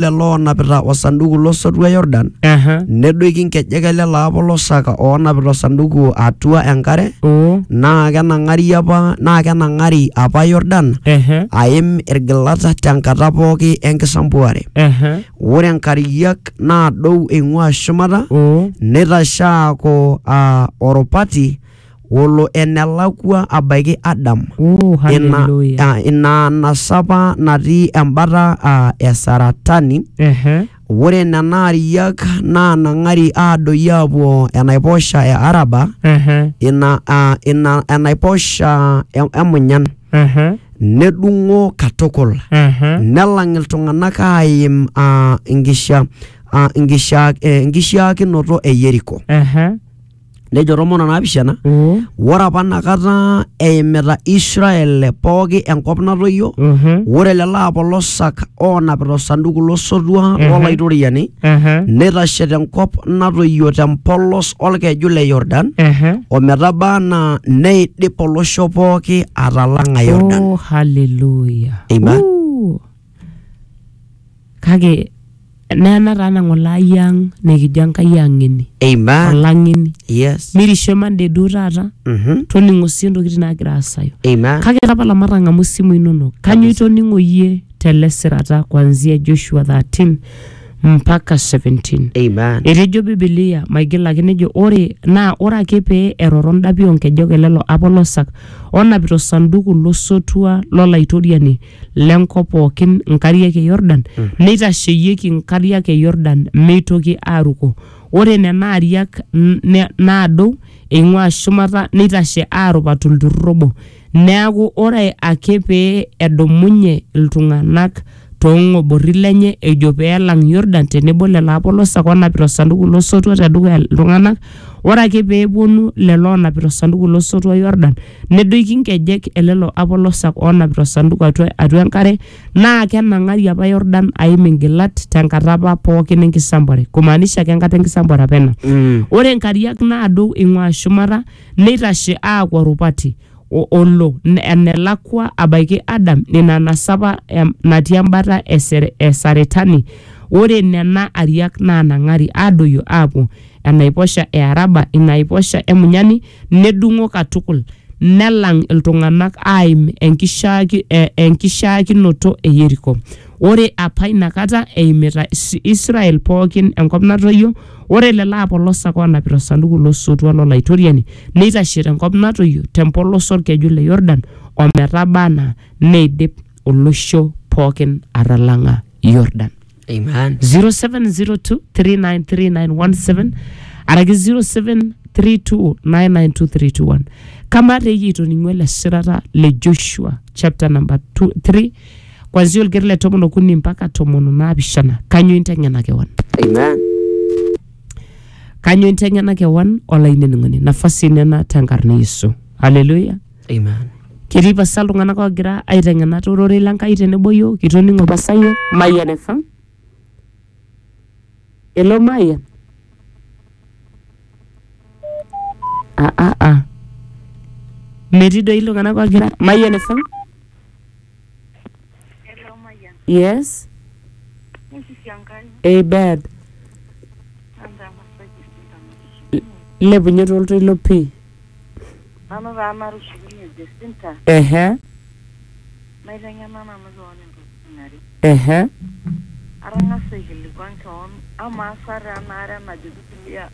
lelo oonapita osanduku losotua Yordan Aha. nedoiki nkejek ele laapo losaka oonapita osanduku atua enkare Oo. naa kenang'ari apa naa kenang'ari apa Yordan Ehe. aim irgilata tenkata pooki enkisampuare Ehe. ore nkariak naadou eing'ua shumata Oo. neitashaaku aa orupati Olo enelakua abaiki Adam, Oh, ina, hallelujah. ah, ina anasa apa natii embata ah, e Saratani, Ehe. ore nena ariak naanang'ari aadoyio aapuo enaiposha e Araba, Ehe. ina, ah, ina enaiposha e- emunyan, Ehe. nedung'o katukul, Ehe. nelang iltung'anak aaim ah, inkisha- ah, inkisha- eh, inkishiaakinoto e Yeriko. Ehe. nejo tomon onaapishana Mm. ore apa nakata eimita israel pooki enkop natoyio Mhm. ore lelo apolosak oonapita osanduku losotua Mhm. lolaitoriani Aha. neitashe tenkop natoyio tempolos olkeju le yordan Aha. ometaba anaa neidip olosho pooki atalang'a yordan Oh, hallelujah. Amen. Ooh. kake nena taa nang'olai ang nikijo enkai ang'eni Amen. olang'eni Yes. mirisho mande duo taata Mhm. toning'o sii ntokitin naagira aasayu Amen. kake tapala matang'amu simu inonok kanyoo itoning'o iyie tele sirata kuanzia joshua 13 mpaka 17 Amen. etejo bibilia maigil ake nejo ore naa ore ake pee eroro ndapi oonkejek elelo apolosak onapita osanduku losotua lolaitoriani le nkop pookin nkariak e Yordan, neitasheyieki nkariak e Yordan meitoki aaruko. Ore nena ariak n- ne- naadou eing'uaa shumata neitashe aarup atua olturrur obo. Neaku ore ake pee edumunye iltung'anak too ng'oborri lenye ejo pee elang Yordan tenebo lelo apolosak oonapita osanduku lo sotua te dukuya iltung'anak, ore ake pee epuonu lelo oonapita osanduku lo sotua Yordan, nedoiki nkejek e lelo apolosak oonapita osanduku atua, atua enkare naa kenang'ari apa Yordan aim ingilat tenkata apa pookin enkisambare kumaanisha ake enkata enkisambare apa ena Mm. ore nkariak naado ing'ua shumata neitashe aaku orupati o- olo n- enelakua abaiki Adam ina nasapa em- natii embata e Sere- e Saretani ore nena ariak naanang'ari aadoyio aapuo enaiposha e Araba, ina aiposha e Munyani, nedung'o katukul, nelang iltung'ana aaim enkishaaki, e, enkishaakinoto e Yeriko. Ore apa ina kata eimita Is- Israel pookin enkop natoyio, ore lelo aapolosak oonapita osanduku lo sotua lo Laitoriani neitashe te nkop natoyio te mpolos olkeju le Yordan o metaba anaa neidip olosho pookin atalang'a Yordan. Amen. 0702393917 araki 0732992321 kama te iyie itoning'ua ele shirata le joshua chapter number 2 3 kwanzia olgeri le tomon okuni mpaka tomon onaapishana kanyo inteng'ena kewan Amen. kanyo inteng'ena kewan olainining'oni nafasi inena tenkarna yesu haleluya Amen. Ketii pasa iltung'anak oogira aiteng'en ate ororei le Nkai tenebo yiok, itoning'o pasa yiok. Mayian FM. Hello Mayian. Ah, ah, ah. Metii doi iltung'anak oogira. Mayian FM. Yes. Hey babe, lepunye toltoilo pii. Nanu taa natushukunye Jesinta. Ehe. Naiteng'ena nanu keon intokitin are. Ehe. Atang'asa aikilikuan keon, amaa sa taa ena are najo Biblia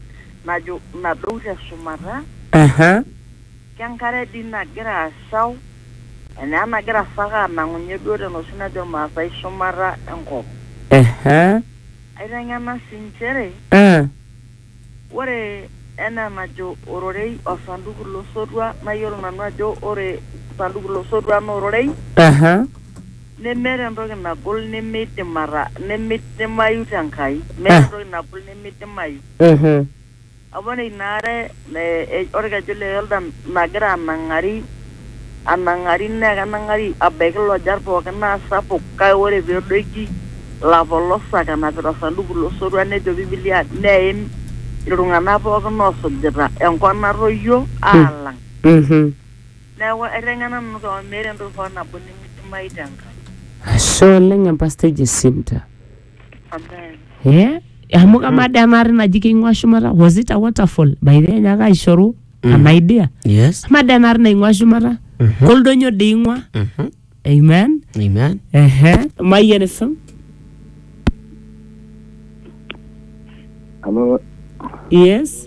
najo nadou te shumata. Ehe. Kenkare dii nagira ashau enaa enagira sa ake anang'unye duo tenoshi najo Ilmaasai shumata enkop. Ehe. Aiteng'ena sii nchere. Ee. Ore enaa enajo ororei o sanduku lo sotua, nayiolo nanu ajo ore sanduku lo sotua naa ororei. Aha. Nemeeta entoki nagol nemeidim ata nemeidimayu te Nkai. Meeta entoki nagol nemeidimayu. Mhm. Apa ore ina are e olkeju le Yordan nagira anang'ari anang'ari naa kenang'ari abaiki lojar pooki naa sapuk kake ore pee edoiki ilapolosak enapita osanduku lo sotua nejo Biblia neim iltung'ana pooki oosujita enkop natoyio aalang. Mhm. Neeku aiteng'ena nanu kewon meeta entoki hoo nabo nimidimayu te Enkai. Ashe oleng Empasto Jacinta. Amen. Eh, amu kamaa dee ena ari naji keing'ua shumata was it a waterfall by the way nyaaka aishoru an idea Yes. amaa dee ena ari naing'ua shumata koldonyo dee ing'ua Mhm. amen Amen. ehe mayian esum Hello, yes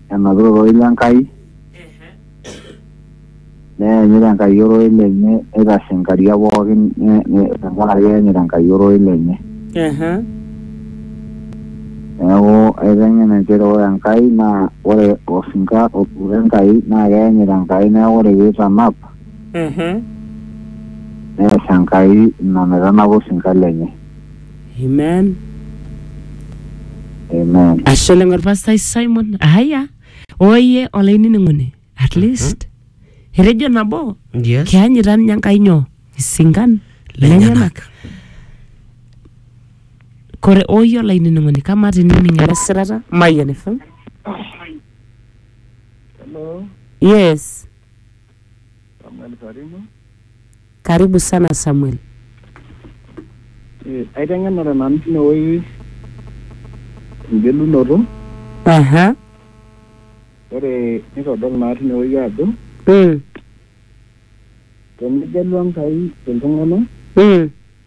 enapita ororei le Nkai neyanyit Enkai ororei lenye neitashe nkariak pookin ne- ne- tenkaraki eyanyit Enkai ororei lenye Ehe. neeku aiteng'en inchere ore Enkai naa ore osinka otuuta Enkai naa keyanyit Enkai neeku ore piitanap Ehe. nees Enkai ina naitanapa osinka lenye Amen. Amen. Ashe oleng orpastai Simon. Haya. Oye olainining'oni. At least. Etejo nabo. Yes. Kianyita ninye Enkai nyoo? Isinkan lenyenak. Kore oye olainining'oni kamaa tinining ele sirata Mayian FM. Hello. Yes. Samuel Sarimo. Karibu sana Samuel. Eh, aiteng'enare nanu tinewueji engelunoto. Aha. Ore nitodol naa tinewueji ajo. Mm. Tenegelu Enkai iltung'anak. Mm.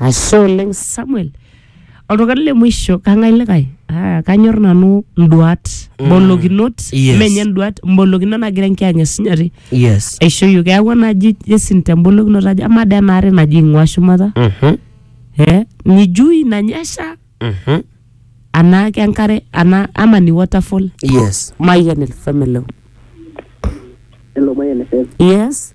Ashe oleng Samuel. Oltung'ani le mwisho kang'ae likae? Ah, kanyor nanu nduat, mbolokinot, Yes. menye nduat, mbolokinot nagira enkiyang'et esinyati Yes. aishoyio. Keeku enaji Jason tembolokinoto ajo amaa dee enaare naji ing'ua shumata Mhm. eh, ni juu inanyesha Mhm. anaa ke enkare anaa ama ni waterfall Yes. Mayian el family. Hello, my NFM. Yes.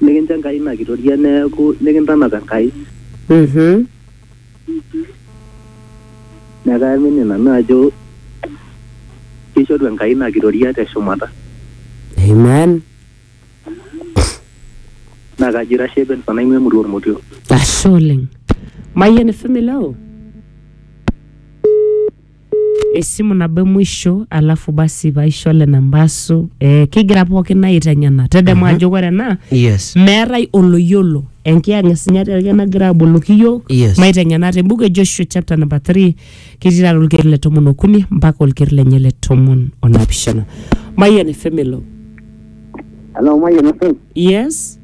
Nikincho Enkai ina kitoria neeku nikintanap Enkai. Mhm. Neeku kaamini nanu ajo kishoru Enkai ina kitoria te shumata. Amen. Naa kajo ira shapen fan aing'ua emurua Ormotio. Ashe oleng. Mayian FM ilo? esimu nabo emuisho alafu basi paisho le nambasu eh, kigira pookin aiteng'ena tedemu ajo ore ena yes meetae oloyiolo enkiyang'isinyati ake nagira aboloki iyiok Yes. maiteng'ena te buku e joshua chapter number 3 ketii taata olkeri le tomon okuni mpaka olkeri lenye le tomon onapishana mayian efemelo Hello, Mayian FM. yes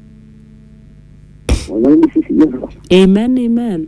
Olainining'oni sisi Yesu. amen amen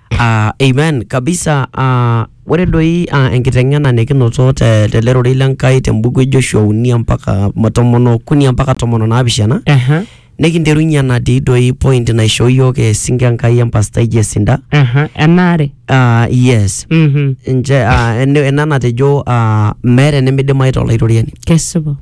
Ah, amen kabisa ah, ore doi ah, enkiteng'ena nikinoto te- tele rorei le Nkai te mbuku e Joshua uni mpaka ma- tomon okuni mpaka tomon onaapishana Aha, nikinterunye enatii doi point naishoo iyiook esinke Enkai empastai Jesinda aha, enaare. ah, yes Mhm, nche ah, ene- ena natejo ah, meeta enimidimayu tolaitoriani kesipa.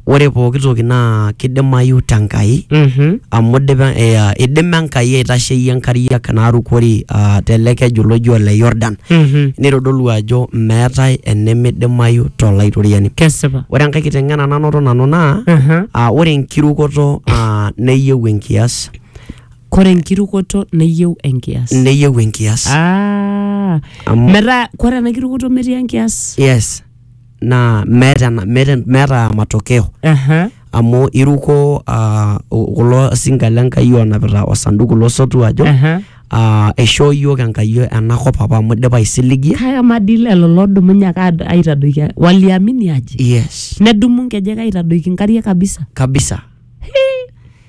ore pooki toki naa kidimayu te Nkai Mhm. amu idipa eh, ah, idima Enkai aitasheyie nkariak naarukori ah, tele keju loji ole Yordan Mhm. neitodolu ajo meetae enimidimayu to Laitoriani. Kesipa. Ore enkae kiteng'ena nanoto nanu naa Mhm. ah, ore enkirukoto ah, neyieu enkias Kore enkirukoto neyieu enkias. neyieu enkias. Ah. Amu- Metaa kore ena kirukoto metii enkias. Yes. naa meeta ena- meeta meeta matokeo Aha. amu iruko ah, u- kulo sinka le Nkai onapita osanduku lo sotua ajo Aha. ah, eishoo iyiook Enkai ena kop apa amu idipa aisiligie. Kake amaa dii lelo loodumunye ake aad- aitadoiki waliamini aje Yes, nedumu nkejek aitadoiki nkariak kabisa kabisa.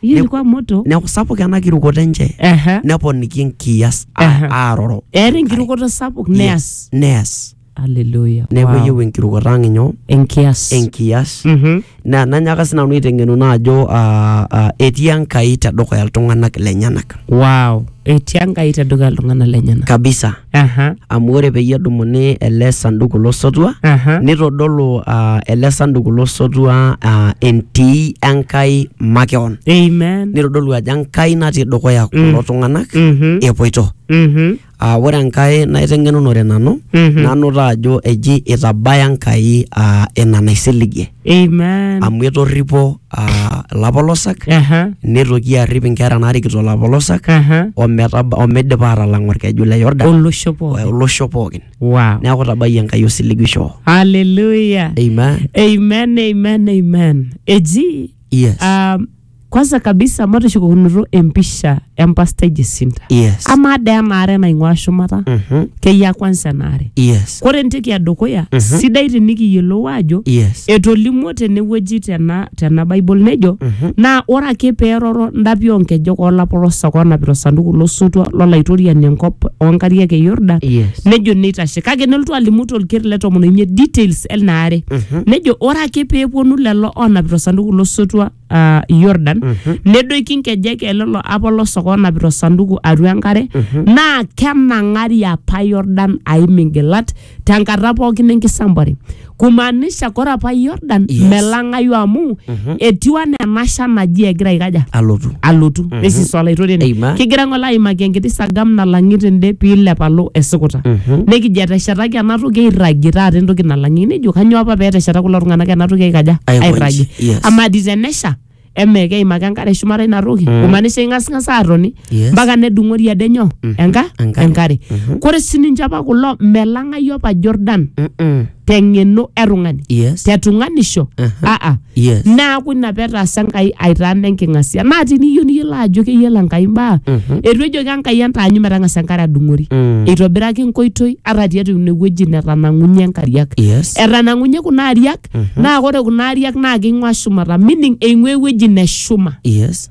hiyo Ne- ilikuwa moto Neeku sapuk ena kirukoto enche Aha. neponiki enkias Aha. a- aaroro. eeta enkirukoto sapuk neas Yes, neas. Hallelujah. neeku Wow. eyieu enkirukoto ang inyoo Enkias. enkias Mhm. na nanyaaka sinanu aiteng'enu naa ajo ah, ah, etii enkai tedukuya iltung'anak lenyenak Wow. Etii Enkai tedukuya iltung'anak lenyenak. kabisa Aha. amu ore peyie edumuni ele sanduku losotua Aha. nitodolu ah, ele sanduku losotua ah, entii enkai makeon Amen. nitodolu ajo enkai natii dukuya kulo tung'anak Mhm. epoito Mhm. aa ore enkae naiteng'enunore nanu Mhm. nanuta ajo eji itabaya Enkai aa ina naisiligie Amen. amu etorripo aa ilapolosak Aha. nitoki arrip inkera naarikito ilapolosak Aha. ometaba omeidipa aatalang orkeju le Yordan Olosho pooki. olosho pookin Wow. neeku itabayie Enkai osiligisho Hallelujah. Amen. Amen, amen, amen. Eji yes um, kwanza kabisa matushukokunoto empisha empastai Jacinta Yes. amaa dee enaare naing'ua shumata Mhm. keyia kwanza enaare Yes. kore entoki edukuya sidai tinikiyiolou ajo Yes. etolimuo tenewueji tena, tena bible nejo naa ore ake peeroro ndapi oonkejek oolapolosak oonapita osanduku losotua lolaitoriani enkop oonkariak e yordan Yes. nejo neitashe kake nelotu alimu tolker le tomon oimiet details elnaare nejo ore ake peeponu lelo oonapita osanduku losotua ah, Yordan nedoiki nkejek e lelo apolos oonapita osanduku atua enkare naa kenang'ari apa Yordan aim ingilat tenkata pookin enkisambuare kumaanisha kore apa Yordan Yes. melang'ayu amu etiu anaa enasha naji egira aikaja alotu alotu nesisu olaitoriani Amen. kigira ng'ole aimaki enkiti sagam nalang'i tende piilep alo esikuta nikijo eteshetaki ena toki airragie taata entoki nalang'i nejo kanyoo apa peetesheta kulo tung'anak ena toki aikaja Aikonji, airragie yes. amaa dii tenesha emee keimaki enkare shumata ina toki kumaanisha ing'asing'as aatoni Yes. mpaka nedung'ori ade nyoo enka Enkare. enkare kore sininche apa kulo melang'ai apa Jordan Mm-mm. teng'eno e tung'ani Yes. te tung'anisho Aha. aa Yes. naaku ina petaasa Enkai aitaana enking'asia naa tiniyieu niyiolo ajo keyiolo Enkai mbaa etu ejoki Enkai entaanyu metang'asa enkare adung'ori Mm. eitobiraki nkoitoi ata tiatua ine wueji netanang'unye nkariak Yes. etanang'unye kuna ariak naa ore kuna ariak naa keing'ua shumata meaning eing'ua ewueji neshuma Yes.